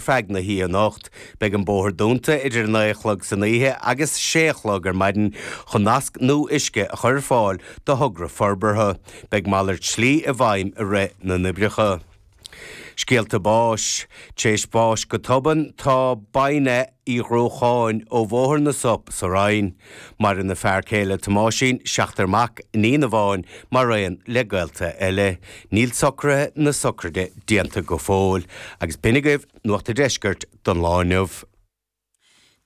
feadh na hoíche anocht. Beidh an bóthar dúnta idir 9 a chlog san oíche agus 6 a chlog ar maidin chun nasc nua uisce a chur ar fáil do thogra forbartha. Beidh malairt slí i bhfeidhm i rith na n-oibreacha. Scéalta báis, Tar éis bháis go tobann, tá Binny Uí Dhrócháin ó Bhóthar na Sop sa Rinn. Maireann a fear céile Tomáisín, seachtar mac, iníon amháin, maraon le gaolta eile. Níl socraithe na socraide déanta go fóill. Agus b'shin agaibh Nuacht a' Deiscirt don lá inniu.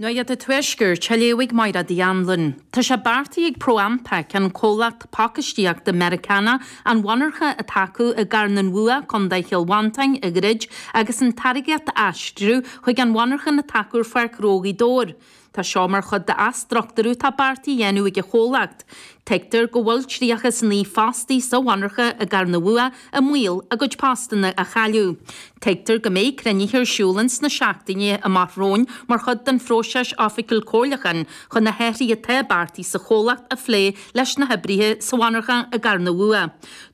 Nuacht a' Tuaiscirt a léifidh Máire Dinny Wren. Tá sé beartaithe ag Pro Ampac, an comhlacht pacáistíochta Meiriceánach, an mhonarcha atá acu i gCarn an Bhua, Co Chill Mhantáin, a dhruid agus an táirgeacht a aistriú chuig an mhonarcha atá acu ar Pháirc Ghnó Ghaoth Dobhair. Tá seo mar chuid d'athstruchtúrú atá beartaithe a dhéanamh ag an chomhlacht. Tuigtear go bhfuil 39 fostaí sa mhonarcha i gCarn an Bhua i mbaol a gcuid postanna a chailleadh. Tuigtear go mbeidh cruinnithe ar siúl ins na seachtainí amach romhainn mar chuid den phróiseas oifigiúil comhairliúcháin chun na hathraithe atá beartaithe sa chomhlacht a phlé leis na hoibrithe sa mhonarcha i gCarn an Bhua.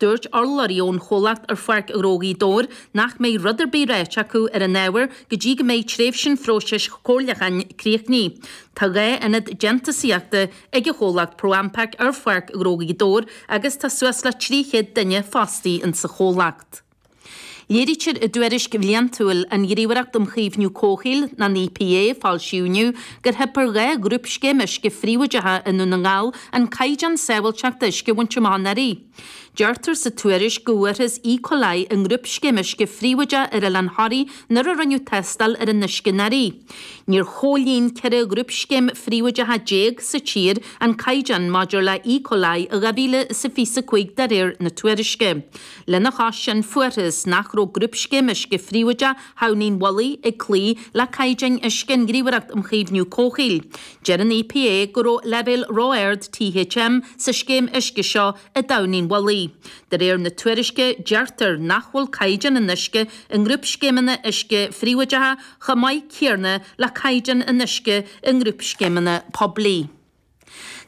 Dúirt urlabhraí ón chomhlacht ar Pháirc Ghnó Ghaoth Dobhair nach mbeidh rud ar bith ráite acu ar an ábhar go dtí go mbeidh tréimhse an phróisis chomhairleacháin críochnaithe. Tá dhá ionad déantúsaíochta ag an chomhlacht Pro Ampac ar Pháirc Ghnó Ghaoth Dobhair agus tá suas le 300 duine fostaí ins sa chomhlacht. Léirítear i dtuairisc bhliantúil an Ghníomhaireacht um Chaomhnú Comhshaoil, an EPA, a foilsíodh inniu, gur theip ar dhá ghrúpscéim uisce phríobháideacha i nDún na nGall an caighdeán sábháilteachta uisce a bhaint amach anuraidh. Deirtear sa tuairisc go bhfuarthas E. coli i ngrúpscéim uisce phríobháideach ar Oileán Thoraí nuair a rinneadh tástáil ar an uisce anuraidh. Níor chomhlíon 14 ghrúpscéim phríobháideacha sa tír an caighdeán maidir le E. coli i 2025 de réir na tuairisce. Lena chois sin fuarthas nach raibh grúpscéim uisce phríobháideach Thamhnaigh an Mhullaigh ag cloí le caighdeáin uisce an Ghníomhaireacht um Chaomhnú Comhshaoil. Deir an EPA go raibh leibhéil ró-ard THM sa scéim uisce seo i dTamhnaigh an Mhullaigh. De réir na tuairisce, deirtear nach bhfuil caighdeán an uisce i ngrúpscéimeanna uisce phríobháideacha chomh maith céanna le caighdeán an uisce i ngrúpscéimeanna poiblí.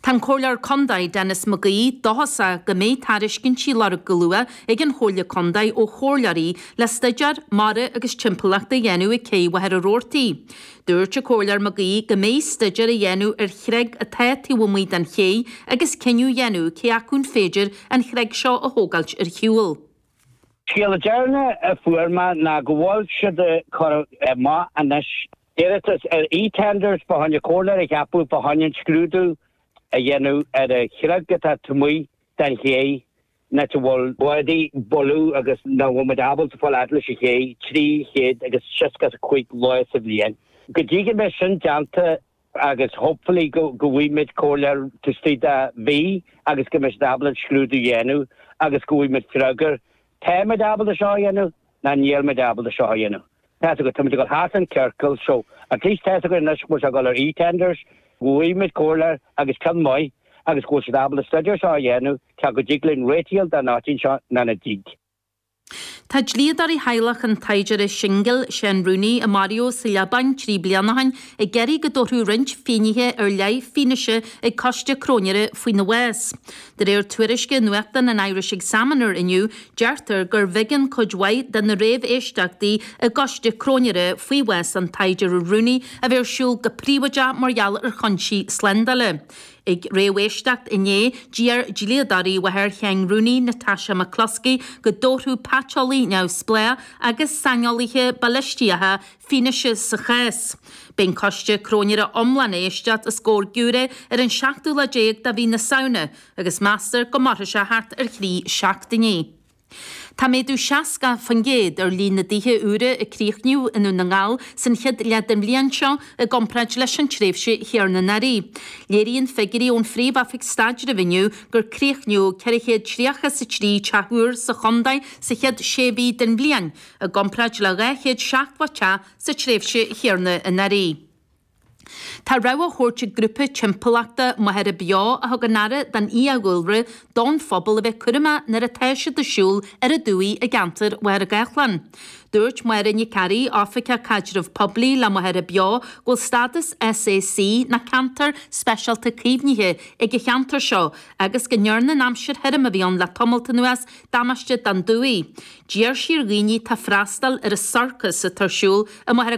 Tá an Comhairleoir Condae, Denis McGee, dóchasach go mbeidh tairiscintí á lorg go luath ag an Chomhairle Condae ó chomhairleoirí le staidéar mara agus timpeallachta a dhéanamh ag Céidh Mhachaire Rabhartaigh. Dúirt an Comhairleoir Mag Aoidh go mbeidh staidéar á dhéanamh ar chreig atá taobh amuigh den chéidh agus cinneadh á dhéanamh cé acu an féidir an chreig seo a thógáilt ar shiúl. Scéala deireanach a fuair mé ná go bhfuil siad ag cur amach anois iarratas ar eTenders fá choinne comhairleoir a cheapadh fá choinne an scrúdú a dhéanamh ar an chreig atá taobh amuigh den chéidh. Nach bhfuil báidí boladh agus nach bhfuil muid ábalta fáil fhad leis an chéidh, 365 lá sa bhliain. Go dtí go mbeidh sin déanta agus hopefully go bhfaighidh muid comhairleoir tuistí de mhí agus go mbeidh siad ábalta an scrúdú a dhéanamh agus go bhfaighidh muid freagra, tá muid ábalta seo a dhéanamh? Nó níl muid ábalta seo a dhéanamh. Tá's agat, tá muid ag dul thart i gciorcal. So, at least tá's againn anois go bhfuil sé ag dul ar eTenders, go bhfuighidh muid comhairleoir agus ceann maith agus go bhfuil siad ábalta an stuidéar seo a dhéanamh cé go dtig linn réiteach a fháil don áit seo nó nach dtig. Tá dlíodóirí theaghlach an tsaighdiúra shingil Seán Rooney, a maraíodh sa Liobáin trí bliana ó shin, ag iarraidh go dtabharfadh roinnt finnéithe ar leith fianaise ag coiste cróinéara faoina bhás. De réir tuairisce nuachtáin an Irish Examiner inniu, deirtear go mb'éigean do chuid mhaith de na réamhéisteachtaí i gcoiste cróinéara faoi bhás an tsaighdiúra Rooney a bheith ar siúl go príobháideach mar gheall ar chúinsí slándála. Ag réamhéisteacht inné, d'iarr dlíodóirí mháthair Sheáin Rooney, Natasha McCluskey, go dtabharfadh paiteolaí neamhspleách agus saineolaithe balaistíochta fianaise sa chás. Beidh an coiste cróinéara iomlán á éisteacht os comhair giúiré ar an seachtú lá déag de mhí na Samhna agus meastar go mairfidh sé thart ar thrí seachtainí. Tá méadú 60% ar líon na dtithe úra a críochnaíodh i nDún na nGall san chéad leath den bhliain seo i gcomparáid leis an tréimhse chéarna anuraidh. Léiríonn figiúirí ón Phríomh-Oifig Staidrimh inniu gur críochnaíodh ceithre chéad tríocha is a trí teach úr sa chontae sa chéad sé mhí den bhliain, i gcomparáid le 277 sa tréimhse chéarna anuraidh. Tá rabhadh á thabhairt ag grúpa timpeallachta Machaire Beo a thugann aire don fhiadhúlra don phobal a bheith cúramach nuair atá siad ag siúl ar an dumhaigh i gceantar Mhachaire Gathlán. Dúirt Máire Nic Fhearaigh, Oifigeach Caidreamh Poiblí le Machaire Beo, go bhfuil stádas SAC nó ceantar speisialta caomhnaithe ag an cheantar seo agus go ndearna an aimsir thirim a bhí ann le tamalt anuas damáiste don dumhaigh. D'iarr sí ar dhaoine atá ag freastal ar an sorcas atá ar siúl i Machaire.